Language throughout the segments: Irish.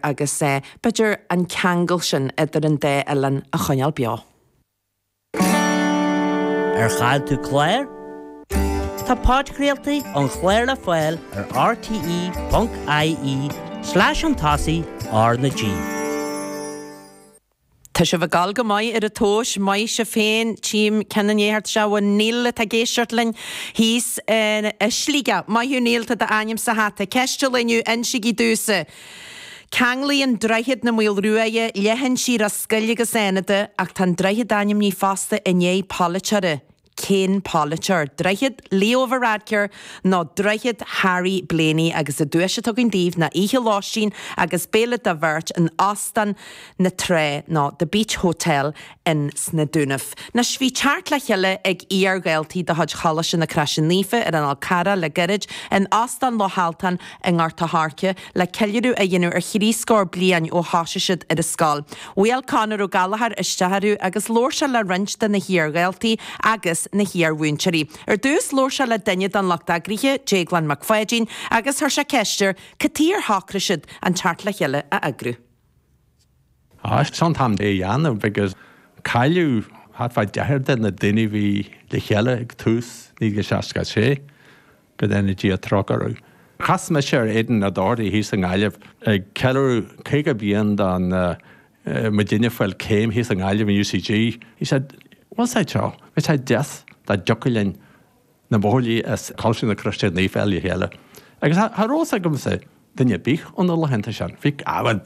agus é b'fheidir an ceangal sin idir an dá oileán a choinneáil beo. Ar chaill tú clár? Tá podchraoltaí ón chlár le fáil ar rte.ie/an tosaigh, RnaG. Tá sibh ag dul go maith ar an tomhas, maith sibh féin, Team Kinahan anocht Siobhán O Neill atá ag éisteacht linn thíos i Sligeach. Maith thú O Neill, tá d'ainm sa hata. Ceist eile inniu, insígí domhsa. Ceanglaíonn Droichead na Maoile Ruaidhe leithinsí Ros Goill agus Fhánada ach tá an droichead ainmnithe fosta i ndiaidh polaiteora. Cén polaiteoir, droichead Leo Varadkar nó droichead Harry Blaney agus an duais atá againn daoibh ná oíche lóistín agus béile do bheirt in Óstán na Trá nó The Beach Hotel in sna Dúnaibh? Anois, bhí teacht le chéile ag iar-dhaltaí de chuid Choláiste na Croise Naofa ar an Fhál Carrach le gairid in Óstán Loch Altan i nGort a' Hairce, le ceiliúradh a dhéanamh ar thrí scór bliain ó thosaigh siad ar an scoil. Bhuail Conor Ó Gallachóir isteach orthu agus labhair sé le roinnt de na hiar-dhaltaí agus na hiar-mhúinteoirí. Ar dtús, labhair sé le duine den lucht eagraithe, Déaglán Mac Pháidín, agus chuir sé ceist air cad chuige ar shocraigh siad an teacht le chéile a eagrú. Is é an t-am é a dhéanamh agus cailleadh thart fá deich de na daoine a bhí le chéile ag tús 1966, go ndéana Dia trócaire orthu. Chas mise ar Aidan O'Doherty thíos i nGaillimh ag ceiliúradh 50 bliain do mo dhuine ag fáil céim thíos i nGaillimh in UCG. Agus dúirt sé liom go mbeadh sé deas dá dtiocfadh linn na buachaillí as Coláiste na Croise Naofa a fháil le chéile agus cha raibh a fhios agamsa duine ar bith ó na laethanta sin, bhí, á bhuel,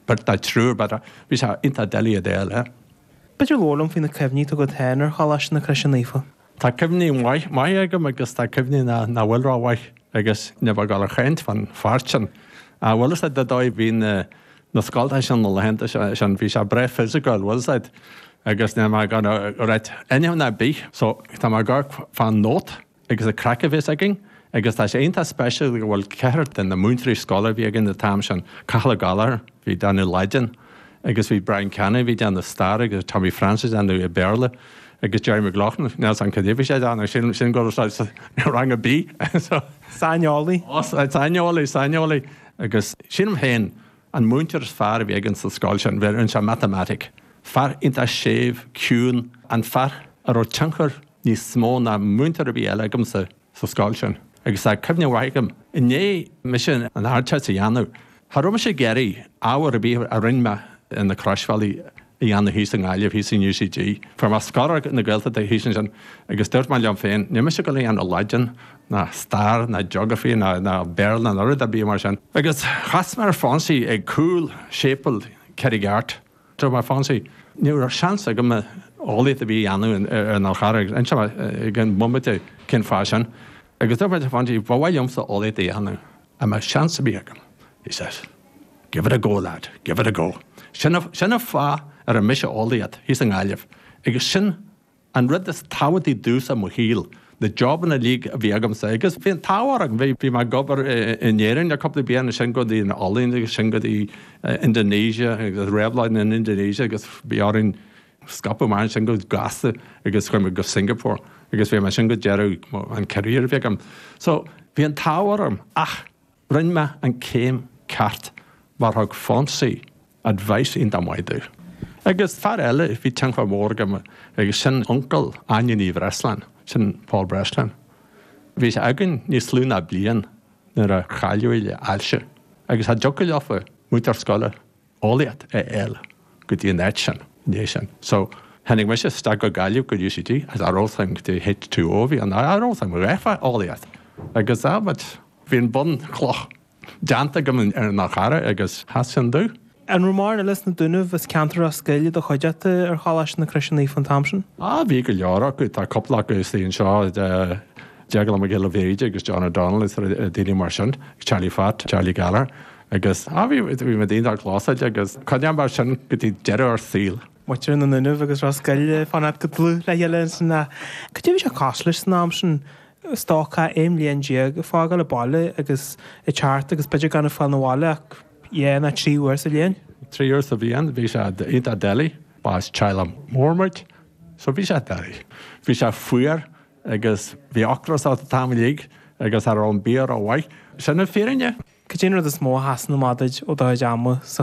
beirt nó triúr but bhí sé iontach doiligh iad a fháil, eh. B'fhéidir labhair liom faoi na cuimhní atá agat féin ar Choláiste na Croise Naofa? Tá cuimhní maithe agam agus tá cuimhní nach bhfuil ró mhaith agus níl mé ag gabháil a chaint faoin pháirt sin. Á bhuel is ar ndóigh bhí na na scoilte sin na laethanta sin bhí sé breá physical was it agus níl mé ag gabháil a ráit a dhath ar bith so tá mé ag gabháil a fhanacht agus an craic a bhí againn agus tá sé iontach speisialta go bhfuil ceathrar de na múinteoirí scoile a bhí againn an t-am sin Cathal Ó Gallagher bhí déanamh Laidin agus bhí Brian Canny bhí déanamh stair agus Tommy Francis déanamh Béarla agus Gerry McLaughlin níl a fhios agam cad é bhí sé déanamh sin sílim go raibh sé rang ar bith so saineolaí saineolaí saineolaí. Agus sílim féin, an múinteoir is fearr a bhí againn sa scoil sin, bhí, rinne sé matamaitic. Fear iontach séimh, ciúin, an fear a raibh tionchar níos mó ná múinteoir ar bith eile agamsa sa scoil sin. Agus tá cuimhne mhaith agam, i ndiaidh mise an ardteist a dhéanamh, cha raibh mise ag iarraidh ábhar ar bith a rinne mé ar na croisbhealaí a dhéanamh thíos i nGaillimh, thíos in UCG. Fuair mé scoláireacht na Gaeltachta thíos ansin agus dúirt mé liom féin, níl mise ag dul a dhéanamh Laidin ná stair ná geography ná Béarla ná rud ar bith mar sin. Agus chas mé ar Fonsie ag cúl shéipéal Charraig Airt. Dúirt mé le Fonsie, ní raibh seans agam eolaíocht ar bith a dhéanamh ar an Fhál Charrach, inseoidh mé i gcionn bomaite cén fáth sin. Agus dúirt mé le Fonsie, ba mhaith liomsa eolaíocht a dhéanamh. An mbeidh seans ar bith agam? He says, Give it a go, lad, give it a go. Sin an fáth a rinne mise eolaíocht thíos i nGaillimh, agus sin an rud is tábhachtaí domhsa i mo shaol, na jobanna uilig a bhí agamsa, agus bhí an t-ádh orm, bhí mé ag obair in Éirinn le cúpla bliain, ansin go dtí an Ollainn, agus ansin go dtí Indonesia, réabhlóid in Indonesia, agus bhí orainn, scaipeadh amach ansin go gasta agus chuaigh mé go Singapore agus bhí mé ansin go deireadh an career a bhí agam. So, bhí an t-ádh orm ach rinne mé an céim ceart mar thug Fonsie advice iontach maith domh. Agus fear eile a bhí tionchar mór aige orm, sin uncail Áine Ní Bhreasláin, sin Paul Breslin. Bhí sé againn níos lú ná bliain nuair a cailleadh é le ailse agus cha dtiocfadh leofa múinteoir scoile eolaíochta a fháil go dtí an áit sin ina dhiaidh sin. So, tháinig mise isteach go Gaillimh go UCG is cha raibh a fhios agam cad é H2O a bhí ann, cha raibh a fhios agam a dhath fá eolaíocht agus ah but bhí an bhunchloch déanta agam ar an Fhál Charrach agus sheas sin domh. An raibh mórán eile as na Dúnaibh is ceantar Ros Goill i do chuideachta ar Choláiste na Croise Naofa an t-am sin? Ah bhí go leor acu, tá cúpla acu ina suí anseo, Declan Mac Giolla Bhríde agus John O'Donnell is daoine mar sin, Charlie Phat, Charlie Gallagher. Agus á bhí bhí muid iontach clósáilte agus coinneoidh mar sin go dtí deireadh ár saoil. Muintir na nDúnaibh agus Ros Goill ag fanacht go dlúth le chéile ins na. Cad é bhí sé cosúil leis san am sin? Stócach aon bhliain déag ag fágáil an bhaile agus ag teacht agus b'fhéidir gan ag fáil na bhaile ach dhá ná trí uair sa bhliain. Trí uair sa bhliain bhí sé iontach doiligh. Ba as teaghlach mór muid so bhí sé doiligh. Bhí sé fuar. Agus bhí ocras ort an t-am uilig agus cha raibh an bia ró-mhaith. Sin an fírinne. Cad é an rud is mó a sheasann amach duit ó do chuid ama sa.